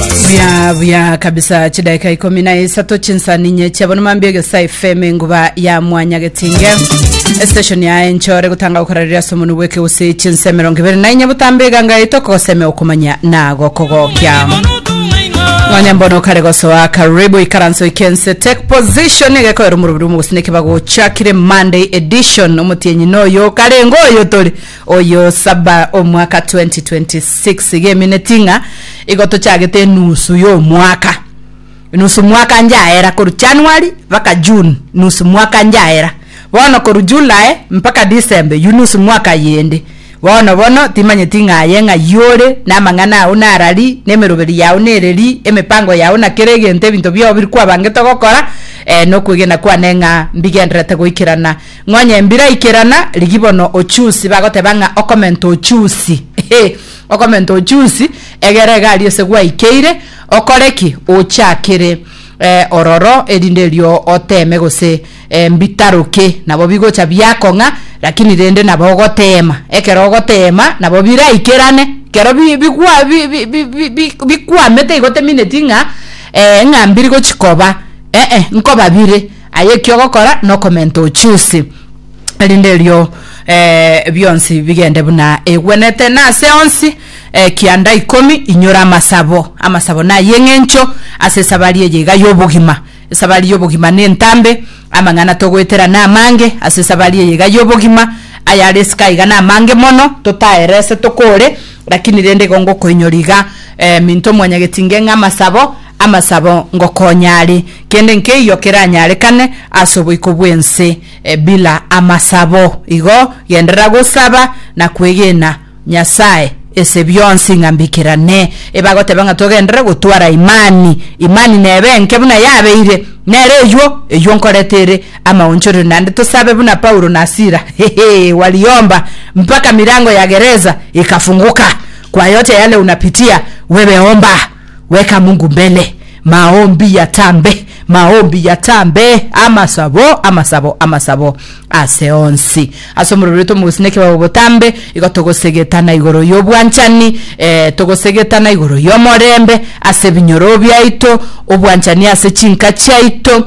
buya buya kabisa chidaika ikomi na isato chinsaninye chiabo nomambia egesa fm enguba ya mwanya getinge estation ya enchore gotanga gokorareria ase omonu bweke gose chinse mirongo ibere na inye botambe eganga yaito okogoseme okomanya na gokogokia mwanya mbono kare gosoa karibu ikaranso ikense take position egekoera omorobiri omogosine kibagochakire monday edition omotienyi noyo karengo oyo tori Oyo saba omwaka 2026 iga emineti ng'a igo tochagete enusu y'omwaka. Enusu mwaka njaera korwa January mpaka June nusu mwaka njaera. Bono korwa July mpaka December yu nusu mwaka yende. Bono bono timanyeti ng'a aye ng'a yore namang'ana ao nara ri, nemeroberi yao nere ri, emepango yao na kera egento ebinto biobo biri kwabangete ogokora, eh, nokwegena kwane ng'a mbigendererete goikerana Ng'onye mbiraikerana, rigia bono ochusi, bagoteba ng'a okomenta ochusi. Hee! Okomenta ochusi, egera egari ase gwaikeire, okore ki? Ochakere eh, ororo, erinde erio oteeme gose eh, mbitaroke. Nabo bigocha biakong'a, rakini rende nabo ogoteema. Ekero ogoteema, nabo biraikerane. Ekero bi- bigwa- bi- bi- bi- bi- bi- bikwamete igo temineti ng'a eh, ng'a mbiri gochikoba, eh-eh, nkoba bire. Aye ekio ogokora nokomenta ochiusi, erinde erio eh, bionsi bigende buna egwenete. Na ase onsi eh, kianda ikomi inyore amasabo, amasabo naye eng'encho ase esabari eye iga y'obogima. Esabari y'obogima nentambe, amang'ana togoetera namange ase esabari eye iga y'obogima, ayare esika iga namange mono, totaere ase tokore, lakini rende igo ngokoinyora iga eh, minto mwanyagetinge ng'a amasabo, amasabo ngokonya are. Kende nkeiyo keranyarekane ase oboiko bw'ense bila amasabo. Igo genderera gosaba na kwegena Nyasae ase bionsi ng'a mbikerane. Ebagoteba ng'a togenderere gotwara imani, imani nebe enke buna yabeire, nere eyuo eyuo nkorete ere amaonchorerio naende tosabe buna Paulo na Sila, hehe, waliomba mpaka mirango ya gereza ikafunguka. Kwa yote yale unapitia, wewe omba. Weka Mungu mbele. Maombi ya tambe, maombi ya tambe, amasabo, amasabo, amasabo ase onsi. Ase omorero oito mogosina ekebao botambe, igo togosegetana igoro y'obwanchani, eh, togosegetana igoro y'omorembe ase ebinyoro biaito, obwanchani ase chinka chiaito,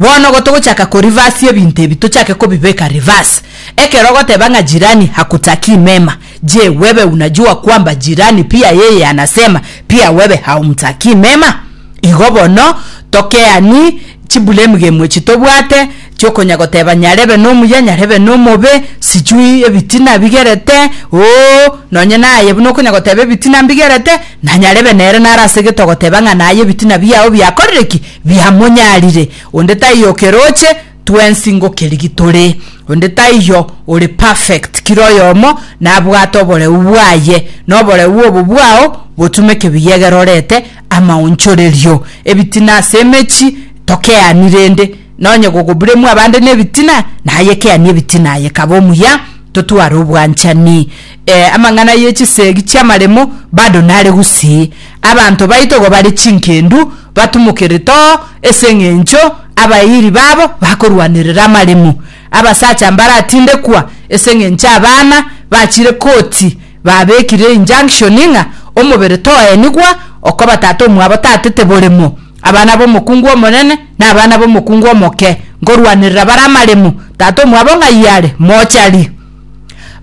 Bono igo togochaka ko reverse ebinto ebi tochake kobibeka reverse. Ekero ogoteba ng'a jirani hakutakii mema, je, wewe unajua kwamba jirani pia yeye anasema pia wewe haumtakii mema? Igo bono tokeani chibulemgemu echi tobwate chiokonya goteba nyarebe nomuya nyarebe nomobe, sijui ebitina bigerete, ooh, nonye naye buna okonya goteba ebitina mbigerete, na nyarebe nere nare ase gete ogoteba ng'a naye ebitina biao biakorire ki? biamonyarire, onde taiyo okeroche twensi ngokerigia tore, onde taiyo ore perfect, kera oyomo nabwate oboreu bwaye, na oboreu obo bwao botumeke biyegerorete amaonchorerio. Ebitina ase emechi tokeani rende, na onye gogoburemwa abande nebitina, naye keani ebitina aye kaba omuya, totware obwanchani. Eh, amang'ana ye chisegi chi'amaremo bado nare gusii. Abanto baito igo bare chingendu, batumokerete oo ase engencho abairi babo bakorwanerera amaremo. Abasacha mbaratindekwa ase engencho abana bachire koti babekire injunction ng'a omobere toenigwa okoba tata omwabo tatete boremo. Abana b'omokungu omonene na abana b'omokungu omoke nkorwanerera bare amaremo, tata omwabo ng'ai are? Mochari.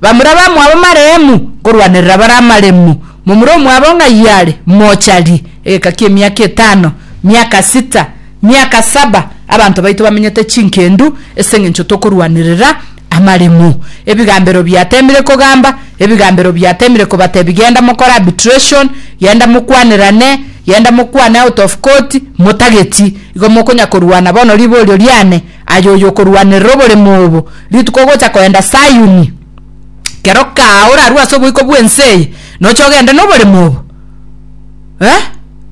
Bamura bamwabo maremu nkorwanerera bare amaremu, momura omwabo ng'ai are, mocharie, egeka ki'emiaka etano, miaka sita, miaka saba, abanto baito bamenyete chingendu, es'engencho tokorwanerera amaremu. Ebigambero biatemire kogamba, ebigambero biatemire kobatebi genda mokore arbitration, genda mokwanerane, genda mokwane out of court, motageti, igo mokonya korwana bono riborio riane, Aye oyokorwanerera oboremu obo rituko ogocha koenda Sayuni, kero kaa orarue ase oboiko bw'ense eye, noche ogende noboremu obo, eh,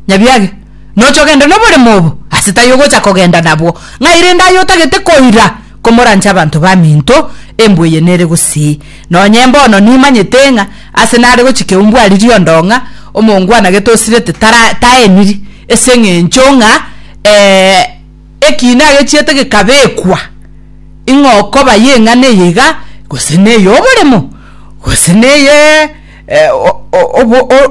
nyabiage, noche ogende noboremu obo, ase taiyo ogocha kogenda nabwo, ng'ai rende aye otagete koira komorancha abanto baminto, embwa eye nere gusii. Nonye mbono nimanyete ng'a ase nare gochika eumbwa ariri ondong'a, omoongwana getosirete tara taeniri, ase eng'encho ng'a eh. ekiina agechiete gekabekwa, ing'o okoba y'eng'ana eye iga, gose ney'oboremo, gose neye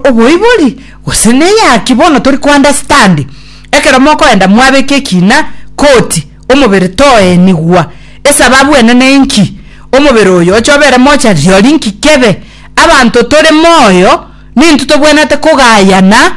oboibori, gose neyaki, bono tori ko understand, ekero mokoenda mwabeka ekiina koti omobere toenigwa, esababu enene inki? omobere oyo oche obere mocha riori inki kebe? abanto tore moyo, nintwe tobwenerete kogayana.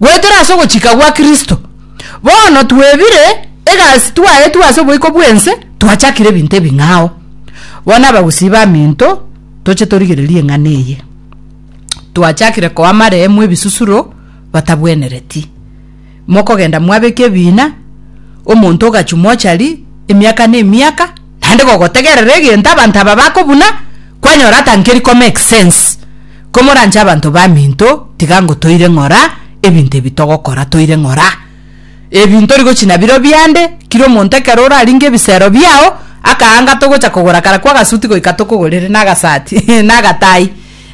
goetera ase ogochika gwa Kristo. Bono twebire egasi twaetwe ase oboiko bw'ense, twachakire ebinto ebing'ao. Bono abagusii baminto, toche torigererie eng'ana eye. Twachakire koa amaremo ebisusuro batabwenereti. Mokogenda mwabeka ebiina, omonto ogachwa mochari, emiaka ne emiaka, naende gogotegerera egento abanto aba bakobuna, kwanyora atankeri komake sense. Komoranche abanto baminto, tiga ngo toire ng'ora ebinto ebi togokora, toire ng'ora ebi ntori gochia nabiro biande, kira omonto ekero oraringe ebisero biao, akaanga togocha kogora kara kw'agasuti goika tokogorere, na agasati, na agatai.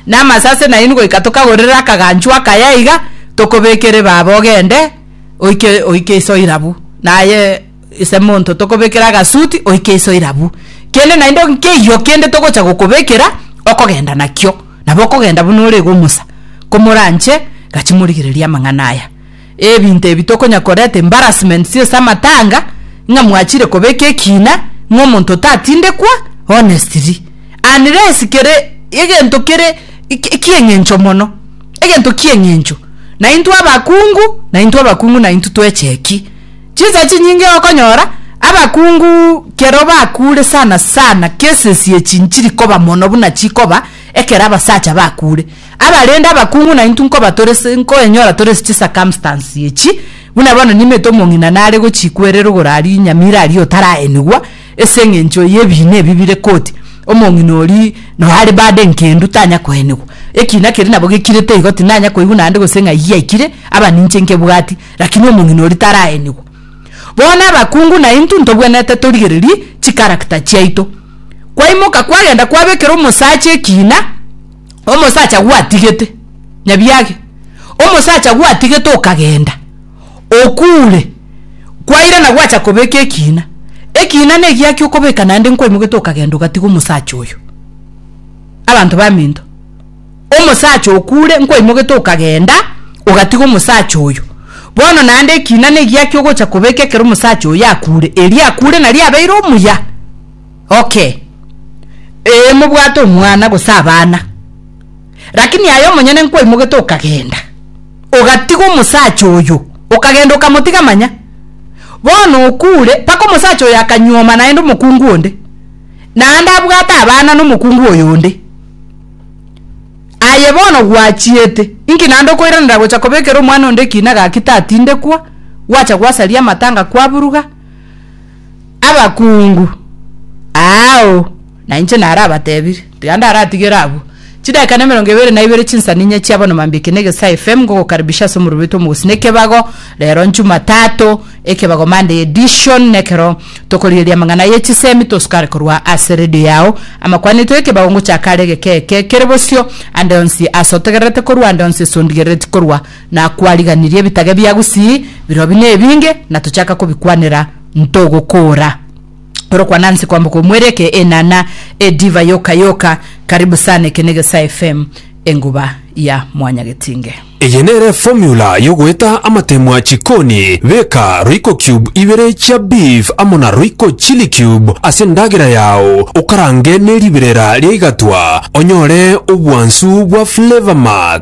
Namasase nainwe goika tokagorere akaganchu akaya iga, tokobekere baba ogende oike oike iso irabu, naye ise monto tokobekere agasuti oike iso irabu. Kende naende nkeiyo kende togocha gokobekera okogenda nakio, nabo okogenda buna ore iga omosa. Komoranche, gachia morigererie amang'ana aya. Ebinto ebi tokonya koreta embarrassment ase amatanga, ng'a mwachire kobeka ekiina, ng'a omonto otatindekwa, honestly. Unless kere egento kere ki'eng'encho mono, egento ki'eng'encho. Naintwe abakungu, naintwe abakungu naintwe twecheki. Chinsa chinyinge okonyora, abakungu kero bakure sana sana, cases echi nchiri koba mono buna chikoba ekero abasacha bakure. Abarende abakungu naintwe nkoba tore se, nkoenyora tore se chicircumstance echi, buna bono nimete omong'ina nare gochikwerera igoro aria inyamira aria otaraenigwa ase eng'encho y'ebiina ebi bire koti, omong'ina oria noe are burden kendu tanya koenigwa. Ekiina keria nabo gekirete igo, tindanya koigwa naende gose ng'a eyio yaikire, aba ninche nkebwati, lakini omong'ina oria taraenigwa. Bono abakungu naintwe ntobwenerete torigererie chicharacter chiaito. Kwaimoka kwagenda kwabekera omosacha ekiina. Omosacha gwatigete, nyabiage, omosacha gwatigete okagenda, okuure, kwairana gwacha kobeka ekiina, ekiina negiaki okobeka naende nkwaimogete okagenda ogatiga omosacha oyo. Abanto baminto, omosacha okuure nkwaimogete okagenda ogatiga omosacha oyo. Bono naende ekiina negiaki ogocha kobeka ekero omosacha oyo akuure, erio akuure nario abeire omuya. Okay, ee mobwate omwana gose abana, lakini aye omonyene nkwaimogete okagenda, ogatiga omosacha oyo, okagenda okamotiga manya, bono okure mpaka omosacha oyo akanyuoma naende omokungu onde, naende abwate abana nomokungu oyo onde. Aye bono gwachiete, inki naende okoiranera gocha kobekera omwana onde ekina gaki tatindekwa, gwacha gwasaria amatanga kwaburuga? abakungu aao nainche narabatebire, tiga ndaratigere abwo. Chidakika na emerongo ebere na ibere chinsaninya chia bono mambia eke negesa FM ngogokaribisha ase omorero oito omogusii na ekebago rero Njumatato ekebago Monday edition nekero tokorigereria amang'ana ye chisemi tosukare korwa ase radio yao amakwani aito ekebago ngochaka are egeka eke kere bosio ande onsi ase otegererete korwa ande onsi ase ondigerereti korwa Na kwariganirie ebitage bia Gusii, birobi na ebinge, na tochaka kobikwanera, ntogokoora. Orokwana nse kwamboka omwere eke enana e diva yoka yoka. Karibu sana eke ne Gesaa FM enguba ya mwanyagetinge. Eye nere formula yogoeta amatemwa chikoni, beka royco cube ibere chia beef amo na royco chilli cube ase endagera yao okarange neribirera riaigatwa onyore obwansu bwa flavour max.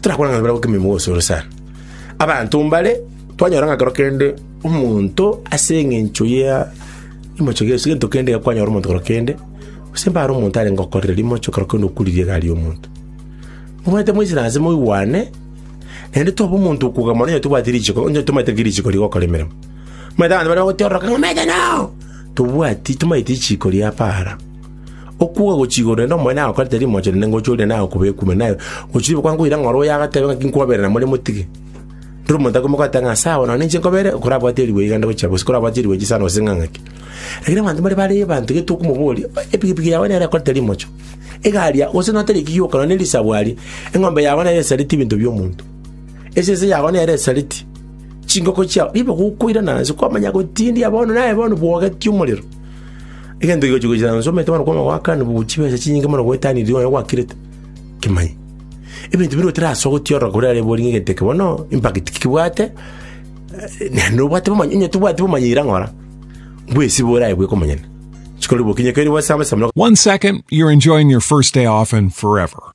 Torakwana ng'a barabwo kemimo gose ore sana. Abanto mbare twanyora ng'a kero kende omonto ase eng'encho ya rimocho ria Yeso gento kende iga kwanyora omonto kero kende gose mbare omonto arenge okorire rimocho kero kende okuririe egari y'omonto. Omanyete moisire aase moigwane naende tobe omonto okoga mono onye tobwati richiko onye tomaete ki richiko rigo okore emeremo. Omanyete abanto bare bagotiororoka ng'a omanyete nao tobwati tomaeti richiko ria para. Okuuga gochiigwa korende omonene agokorete rimocha rinde ngochia orinde naye okoba ekume, naye gochia ribe kwankoira ng'a ore oyo agatebe ng'a tinkobaberera namore motige. Rero omonto akoimoka agateba ng'a sawa nonye ninche nkobeere, okorabwate erigwe iga nde gochia bosio, korabwati erigwe chisano gose ng'a ng'aki. Lakini abanto mbare bare abanto gete okomoboria, epigipigi yao nere ekorete rimocha, egari yao gose notere ki gioka nonye risagu aria, eng'ombe yago nere esareti ebinto bi'omonto, esese yago nere esareti chingoko chiao, ribe gokoirana nse kwamanya gotindia bono naye bono bwogetie omorero. Egento kigochia gochia nainche omanyete bono kwanga goakanwa bobe chibesa chinyinge mono goetania riromo yaye gwakirete? Kimanye. Ebinto bire otarasogotia ororo kore are boringe egento eke bono impact ki kebwate, eh, naende obwate bomanyi- onye tobwati bomanyire ng'ora, bwesibe oraye bweka omonyene. Chikorwa bokinyekeriri bwase abasomero One second, you're enjoying your first day off and forever.